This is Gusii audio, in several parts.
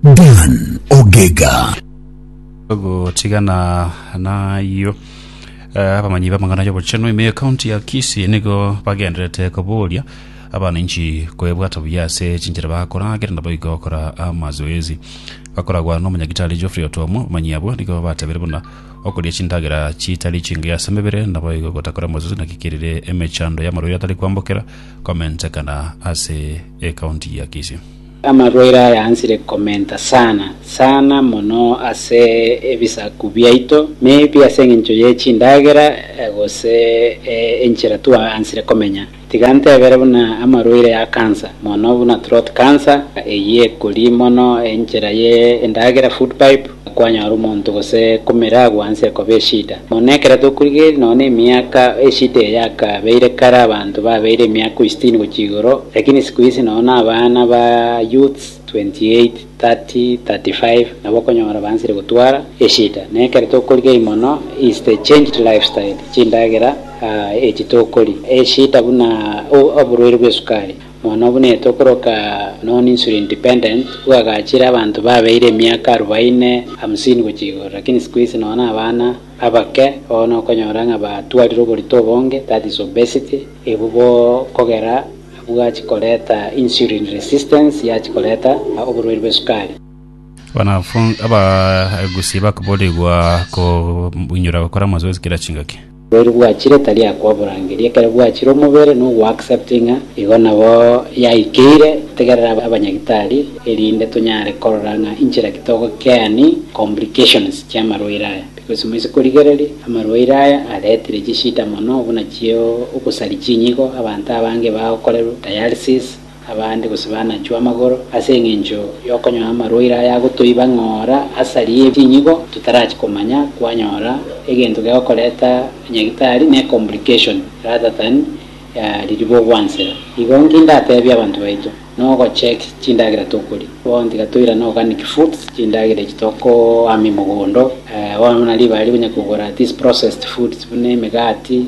Dan Ogega. Gotigana nayio, eh, abamanyi b'amang'ana y'obochenu ime ekaunti ya Kisii nigo bagenderete koboria abananchi kwebwata buya ase chinchera bakora kera nabo igo gokora amazoezi. Bakoragwa n'omonyagitari Geoffrey Otuomo, abamanyi abwo nigo batebeire buna okoria chindagera chitari chingiya ase emebere nabo igo gotakora amazoezi naki kerire emechando y'amarwaire atari kwambokera komentekana ase ekaunti ya Kisii. Amarwaire aya ansire komenta sana, sana mono ase ebisaku biaito, maybe ase engencho ye chindagera gose enchera tu ansire komenya. Tiga ntebere buna amarwaire ya cancer, mono buna throat cancer, eyio ekori mono enchera ye endagera, food pipe, Kwanyora omonto gose komera agwanse ekoba eshida. Mono ekero tokorigereria nonya nemiaka eshida eye yakabeire kare abanto babeire emiaka oi sitini gochia igoro, lakini siku hizi nonya na abana ba youths 28, 30, 35 nabo okonyora bansire gotwara eshida. Na ekero tokorigereria mono is the changed lifestyle, chindagera echi tokoria, eshida buna oborwaire bwesukari. Bono buna etokoroka nonya Insulo Independent, bwagachire abanto babeire emiaka arubaine, hamsini gochia igoro, lakini siku hizi nonya abana abake oo nokonyora ng'a batwarire oborito obonge, that is obesity, ebu bo kogera bwachi koreta insulin resistance yachi koreta oborwaire bwe sukari. Abanafunsi, abagusi bakoboorigwa koinyora gokora amazoezi kera chingaki. Oboiri bwachire tari akoborangeria, ekero bwachire omobere nogoacceptinga, igo nabo yaikeire tegerera abanyagitari erinde tonyare korora ng'a inchera ki togokeani complications chi'amarwaire aya, because moise korigereria amarwaire aya aretire chishida mono buna chio ogosari chinyigo, abanto abange bagokorerwa dialysis, Abande gose banachwa amagoro ase engencho y'okonyora amarwaire aya agotoiba ng'ora asari ye chinyigo totarachi komanya kwanyora egento gegokoreta nyagitari ne complication rather than ririba ogwansera. Igo nki ndatebie abanto baito? Nogocheck chindagera tokoria. Bono tiga toirane organic foods, chindagera echi tokoama emogondo. Bono buna ribaga rikonyakogora these processed foods buna emegati,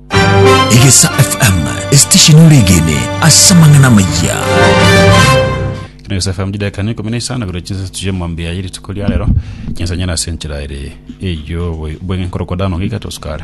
Egesa FM esitishini oregene ase amang'ana amayia. Kino Gesa FM chidakika ne ikumi na isano igoro chinsa tuje mwambi ya yiri tuko ria rero. Chinsa nyana ase enchera ere eyo bwe- bweng'e nkorokwa dano giga tosukare.